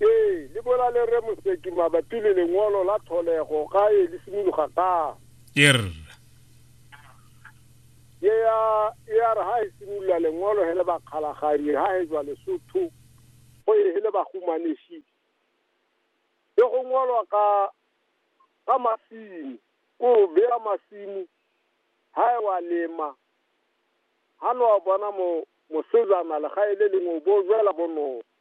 Ee, le bola le re Moseki mabapi le lengolo la tlholego ga e le simologa ka. Ye re. Ye ya ye ya re ha e simolola lengolo he le bakgalaganye ha he jwa Lesotho go e he le bahumaneshi. Ke go ngolwa ka ka masimo, ko beya masimo ha e wa lema. Ha no bona mo mosejana le ga e le lengwe bo jwela bonolo.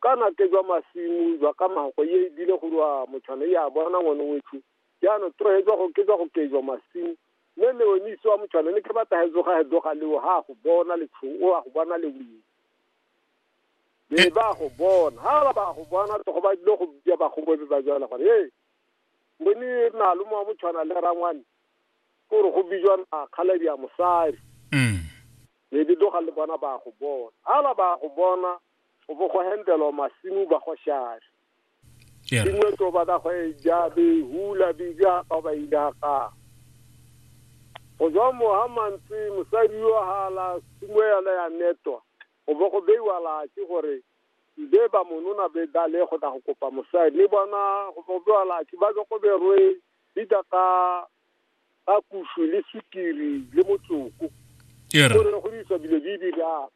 kana ke jwa masimo jwa ka mako ye e bile go rwa motshwana e a bona ngwane wetsho jaanong trohe jwa go ke jwa go ke jwa masimo mme leonise wa motshwana ne ke batla ga tsoga ga tloga leo ga a go bona letshogo o a go bona leweng be ba go bona ga ba ba go bona tlogo ba dilo go bja ba go bobe ba jala gore ee bone malome wa motshwana le rangwane ko re go bijwa na kgaladi ya mosadi mm. be di tloga le bona ba go bona ga ba ba go bona go bo go hendelwa masimo ba go shaya yeah. dingwe to ba ka go e ja be hula be ja ka ba ida ka go tswa mo ha mantsi mosadi yo ha la simo ya la ya netwa go bo go beiwa la ke gore be ba monona be da le go ta go kopa mosadi le bona go bo beiwa la ke ba go go berwe dita ka ka kusu le sukiri le motsoko gore go di sa bile di di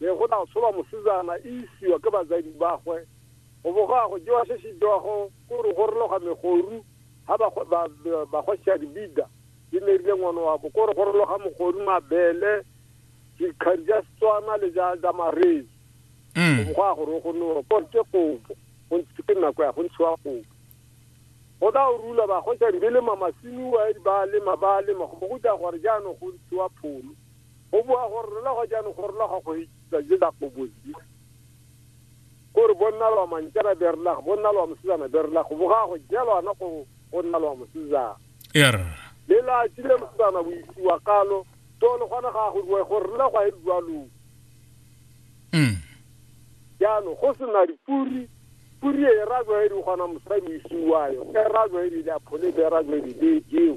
Be go tla tsholwa mosetsana e isiwa ke batsadi bagwe, go bo go ya go jewa se se jewago ko re go rologa megoru, ha ba go ba ba go sia dibida di nerile ngwana wa bo ko re go rologa mogoru mabele dikgari ja Setswana le ja ja marezi. Mm. Go ya go re go no ko ke kobo, go ntse ke nako ya go ntshiwa kobo. Go tla o rula ba go sia dibele mamasiniwa ba lema ba lema go bo go ja gore jaanong go ntshiwa pholo. go boa gore rona go jaanong go rona ga go hitsa je da go bozi gore bonna lwa mantjana be rena go bonna lwa mosizana be rena go boga go jelwa na go go nna lwa mosizana ya re le la tsile mosizana go isiwa kalo to le gona ga go rua gore rena go a rua lo mm jaanong go sena dipuri puri e ra go e di gona mosadi o isiwa yo e ra go e di la phole be ra go e di be jeo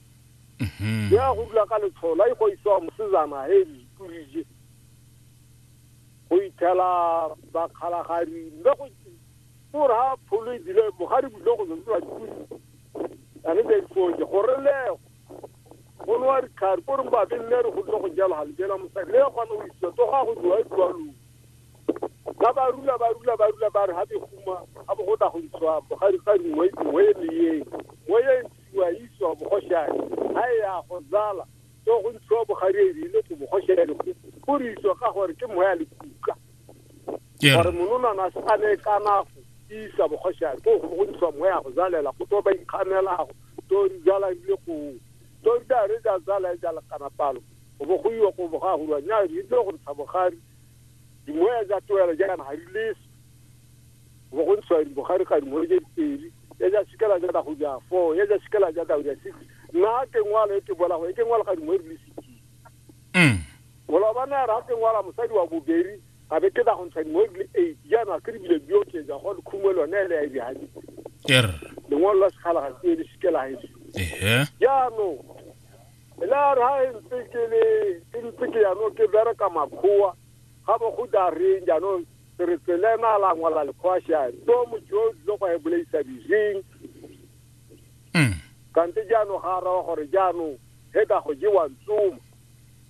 Mhm. ya go dula ka letshola e go isiwa mosezana he diturije go ithela bakgalagadi mme go gore ha pholo e dile bogadi bule go zwa dituri ane tsa difoje gore lego go nowa ditlhari ko reng babe nne re go dile go jalo ga lejela mosadi le kgone go isiwa to ga go diwa e diwa loo ba ba rula ba rula ba rula ba re ha beguma ga bo go tla go isiwa bogadi ga dingwe dingwe e le ye ngwe ye wa iswa bogoshane ga e ya go zala so go ntshiwa bogadi e rile go bogoshane go re iswa ka gore ke moya le kuka gore mononana se a ne ka nago isa bogoshane ko go ntshiwa moya go zalela go to ba ikganelago to di zala rile go to di da re da zala e jala kana palo go bo go iwa go boga go rwa nya rile go ntsha bogadi dimoya ja toela ja kana ga di leso go go ntshwa di bogare ga dingwe ke pedi ya ja sikela ja ka go ja fo ya ja sikela ja ka go ja six na ke ngwala e ke bola go e ke ngwala ga dingwe di six mm bola ba na ra ke ngwala mosadi wa bobedi a be ke da go ntsha dingwe di eight ya na ke bile bio ke ja go khumwe lone le ya ja di er dingwe la sikhala ga ke di sikela e ehe ya no la ra e ntse ke le ke ntse ke ya no ke bereka makhoa ga bo go da reng jaanong ke re tselena a la ngwala lekgwasha to motho yo o tlile go e bolaisa dijeng Mm. kante jaanong ga a raba gore jaanong he ka go jewa ntsoma